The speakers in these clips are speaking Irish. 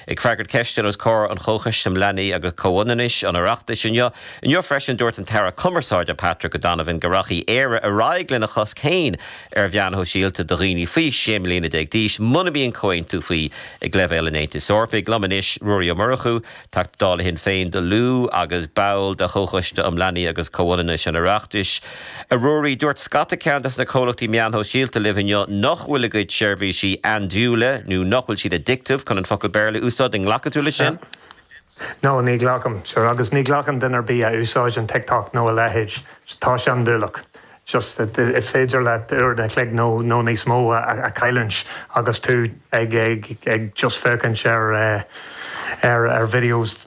Ag freagairt ceisteanna os comhair an Chomhchoiste um Leanaí agus Comhionannais an Oireachtais inniu inniu freisin, dúirt an tAire Cumarsáide Patrick O'Donovan go rachadh Éire ar aghaidh lena chosc féin ar mheáin shóisialta do dhaoine faoi 16 mbliana d'aois muna mbíonn comhaontú faoi ag leibhéal an Aontais Eorpaigh. Liom anois Ruairí Ó Murchú, Teachta Dála Shinn Féin do Lú agus ball de Chomhchoiste um Leanaí agus Comhionannais an Oireachtais. A Ruairí, dúirt scata ceann de na comhlachtaí meán-shóisialta libh inniu nach bhfuil a gcuid seirbhísí andúileach nó nach bhfuil siad addictive, chun an focal Béarla a úsáid, an nglacfaidh tú le sin? No, ní ghlacaim. Sure, agus ní ghlacann duine ar bith a úsáideann TikTok nó a leithéid. Tá sé andúileach. Just, is féidir leat uair a chloig nó nó níos mó a a chailliúint agus tú ag ag ag just féachaint ar eh, ar videos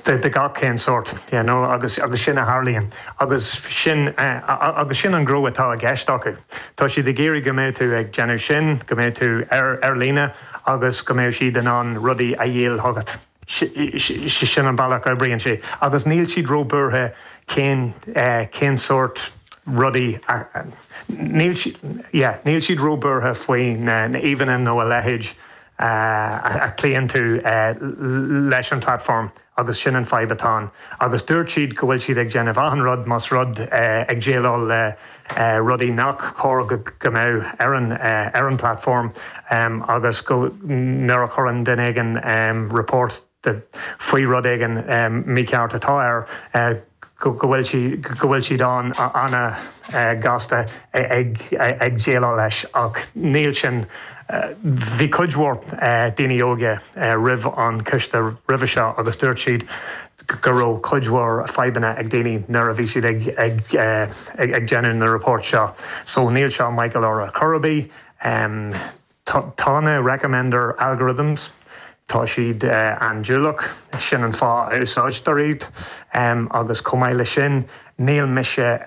de gach cén sort you know agus agus sin a tharlaíonn agus sin agus sin an rud atá i gceist acu. Tá siad ag iarraidh go mbeidh tú ag déanamh sin go mbeidh tú ar ar líne agus go mbeidh siad in ann rudaí a dhíol chugat. Sin an bealach a oibríonn sé agus níl siad ró buartha cén cén sort rudaí a níl siad yeah níl siad ró buartha faoi na na íomhanna nó a leithéid a chloíonn tú leis an platform agus sin an fadhb atá ann agus dúirt siad go bhfuil siad ag déanamh achan rud más rud ag déileáil le rudaí nach cóir go mbeadh ar ar an platform agus go nuair a chuireann duine éigin report the faoi rud éigin mícheart atá air go bhfuil siad an- an-ghasta ag déileáil leis ach níl sin Bhí cuid mhór daoine óga roimh an choiste roimhe seo agus dúirt siad go raibh cuid mhór fadhbanna ag daoine nuair a bhí siad ag déanamh na report seo so níl seo Michael orthu chor ar bith. Tá na recommender algorithms, tá siad andúileach, sin an fáth a úsáidtear iad agus chomh maith le sin níl mise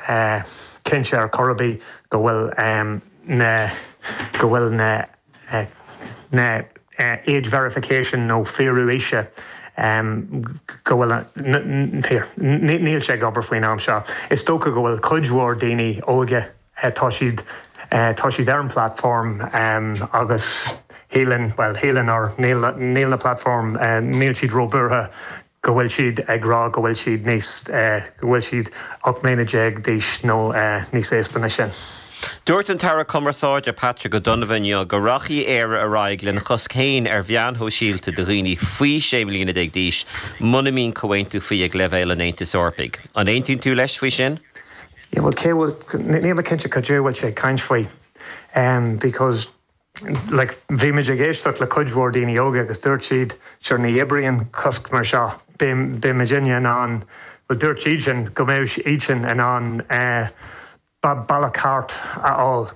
cinnte ar chor ar bith go bhfuil na go bhfuil na na age verification nó fíorú aoise go bhfuil an níl sé ag obair faoin am seo. Is dócha go bhfuil cuid mhór daoine óga Tá siad, tá siad ar an platform agus shíleann, bhuel, shíleann or níl, níl na platform, níl siad ró-bhuartha go bhfuil siad ag rá go bhfuil siad níos, go bhfuil siad 18 mbliana d'aois nó níos aosta na sin. Dúirt an tAire Cumarsáide Patrick O'Donovan inniu go rachadh Éire ar aghaidh lena chosc féin ar mheáin shóisialta do dhaoine faoi 16 mbliana d'aois muna mbíonn comhaontú faoi ag leibhéal an Aontais Eorpaigh. An aontaíonn tú leis faoi sin? Yeah bhuel cé bhfuil, níl mé cinnte cad é atá sé ag caint faoi because like bhí muid ag éisteacht le cuid mhór daoine óga agus dúirt siad sure ní oibríonn cosc mar seo, beidh muidinne in ann, bhuel dúirt iadsan go mbeadh iadsan in ann bealach thart a fháil.